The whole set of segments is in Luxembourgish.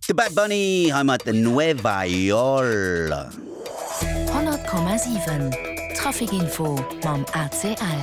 De Bad Bunny hei mat Nueva Yorl. 100,7 Traficinfo mam ACL.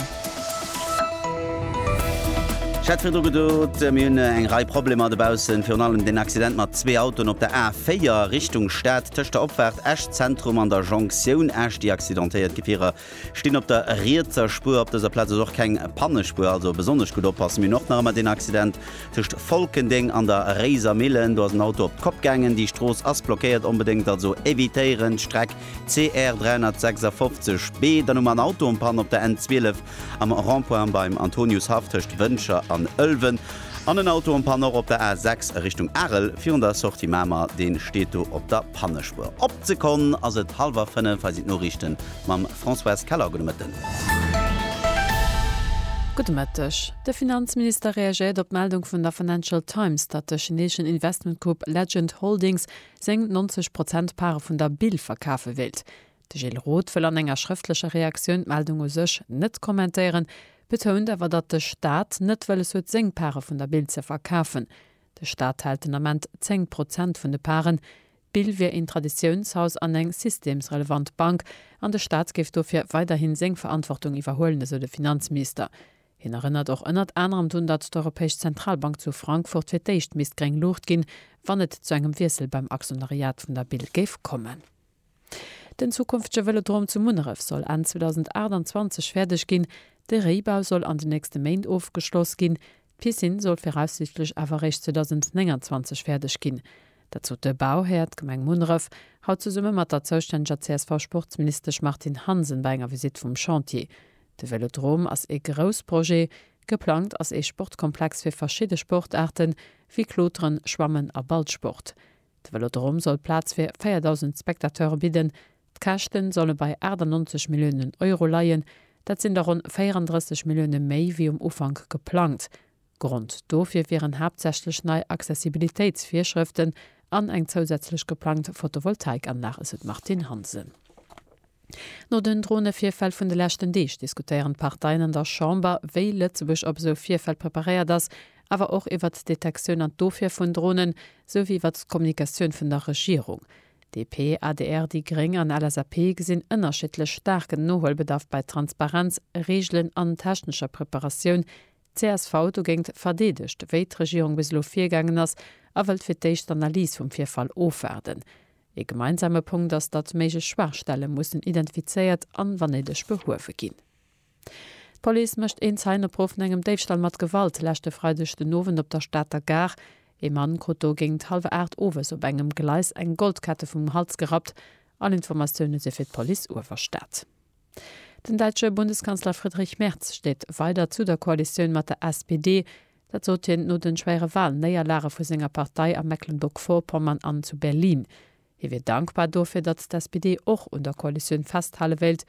Ech hat virdru gedot, mir hunn eng Rei Problemer dobaussen, virun allem den Accident mat zwee Autoen op der A4 Richtung Stad, tëscht der Opfaart Esch-Zentrum an der Jonktioun Esch. Déi accidentéiert Gefierer Stinn op der rietser Spuer. Op dëser Plaz ass och keng Pannespuer, also besonnesch gutt oppassen. Mir hunn och nach ëmmer deen Accident tëscht Folkendeng an der Réiser Millen. Do ass en Auto op d'Kopp gaangen. Déi Strooss ass blockéiert, onbedéngt also evitéieren. D'Streck CR 356B. Dann hu mer en Auto en panne op der N 12 am Rond-point beim Antoniushaff tëscht Wëncher an Ëlwen. An en Auto en panne och op der A6 a Richtung Arel virun der Sortie Mamer, dee steet do op der Pannespuer. Op d'Sekonn ass et hallwer 5, hei sinn d'Noriichten mam Françoise Keller. Gudde Mëtten. Gudde Mëtteg. De Finanzminister reagéiert op d'Meldung vun der Financial Times, datt de chineeschen Investmentgrupp Legend Holdings seng 90 Prozent Pare vun der Bill verkafe wéilt. De Gilles Roth wëll an enger schrëftlecher Reaktioun d'Meldung u sech net kommentéieren, betount awer, datt de Staat net wëlles huet seng Pare vun der Bild ze verkafen. De Staat hält den Ament 10 Prozent vun de Paren. D'Bild wier een Traditiounshaus an eng systemsrelevant Bank an de Staat géif dofir weiderhi seng Verantwortung iwwerhuelen, esou de Finanzminister. Hien erënnert och ënnert anerem drun, datt d'Europäesch Zentralbank zu Frankfurt fir d'éischt misst gréng Luucht ginn, wann et zu engem Wiessel beim Aktionariat vun der Bild géif kommen. Den zukünftege Vëlodrom zu Munneref soll Enn 2028 fäerdeg ginn. De Réibau soll an den nächste Méint ofgeschloss ginn. D'Piscine soll viraussiichtlech awer eréischt 2029 fäerdeg ginn. Dat sot de Bauhär, d'Gemeng Munneref, haut zesumme mat der zoustänneger CSV-Sportsministesch Martine Hansen bei enger Visitt vum Chantier. De Vëlodrom ass ee grouss Projet. Geplangt ass ee Sportkomplex fir verschidde Sportaarten, wéi Kloteren, Schwammen a Ballsport. De Vëlodrom soll Plaz fir 4.000 Spectateure bidden. D'Käschte solle bei 98 Milliounen Euro leien. Dat sinn der ronn 34 Millioune méi wéi um Ufank geplangt. Grond dofir wieren haaptsächlech nei Accessibilitéitsvirschrëften an eng zousätzlech geplangt Photovoltaikanlag, esou d'Martine Hansen. No den Dronevirfäll vun de leschten Deeg diskutéieren d'Parteien an der Chamber, wéi Lëtzebuerg op esou Virfäll preparéiert ass, awer och iwwert d'Detektioun an d'Ofwier vun Dronen, sou wéi iwwert d'Kommunikatioun vun der Regierung. DP, adr, déi gréng an LSAP gesinn ënnerschiddlech staarken Nohuelbedarf bei Transparenz, Reegelen an technescher Preparatioun. Csv dogéingt verdeedegt, wéi d'Regierung bis elo virgaangen ass a wëllt fir d'éischt d'Analys vum Virfall ofwaarden. Ee gemeinsame Punkt ass, datt méiglech Schwaachstelle mussen identifizéiert an, wann néideg, behuewe ginn. D'Police mécht een Zeienopruff no engem Déifstall mat Gewalt leschte Freideg den Owend op der Stater Gare. Ee Mann krut do géingt hallwer 8 owes op engem Gleis eng Goldkette vum Hals gerappt. All Informatioune si fir d'Police Uewerstad. Den däitsche Bundeskanzler Friedrich Merz steet weider zu der Koalitioun mat der SPD. Dat sot hien no de schwéiere Walnéierlage vu senger Partei a Mecklenburg-Vorpommern an zu Berlin. Hie wier dankbar dofir, datt d'SPD och un der Koalitioun festhale wéilt.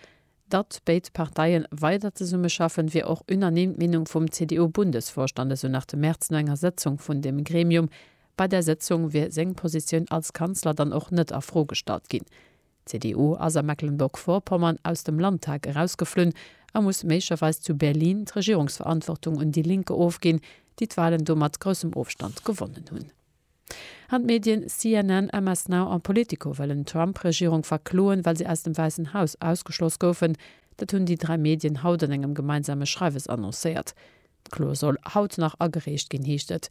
Datt béid Parteie weider zesummeschaffen, wier och unanime d'Meenung vum CDU-Bundesvorstand, esou nach de Merz no enger Sëtzung vun deem Gremium. Bei där Sëtzung wier seng Positioun als Kanzler dann och net a Fro gestallt ginn. D'CDU ass a Mecklenburg-Vorpommern aus dem Landtag erausgeflunn a muss méiglecherweis zu Berlin d'Regierungsverantwortung un Die Linke ofginn, déi d'Wahlen do mat groussem Ofstand gewonnen hunn. An d'Medien CNN, MS Now a Politico wëllen d'Trump-Regierung verkloen, well si aus dem Wäissen Haus ausgeschloss goufen. Dat hunn déi dräi Medien haut an engem gemeinsame Schreiwes annoncéiert. D'Klo soll haut nach agereecht ginn, heescht et.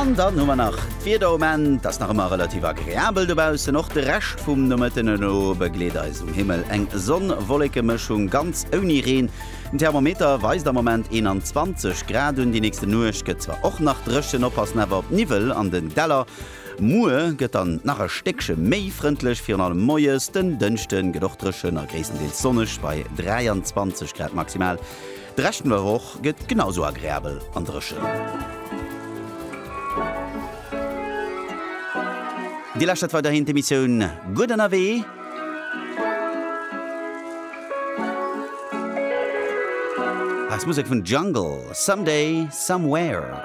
An dann hu mer nach d'Wieder um Enn. Et ass nach ëmmer relativ agreabel dobaussen, och de Rescht vum Nomëtten. Elo begleet eis um Himmel eng Sonn-Wolleke-Mëschung, ganz ouni Reen. Den Thermometer weist am Moment 21 Grad un. Déi nächste Nuecht gëtt zwar och nach dréchen, oppassen awer op Niwwel an den Däller. Muer gëtt dann nach e Stéckche méi frëndlech, virun allem moies. Den Dënschde gëtt och dréchen a gréisstendeels sonneg bei 23 Grad maximal. De Rescht vun der Woch gëtt genau sou agreabel an dréchen. Dir lauschtert weiderhin d'Emissioun Gutt ënnerwee. Hei ass Musek vun Jungle, Someday, Somewhere.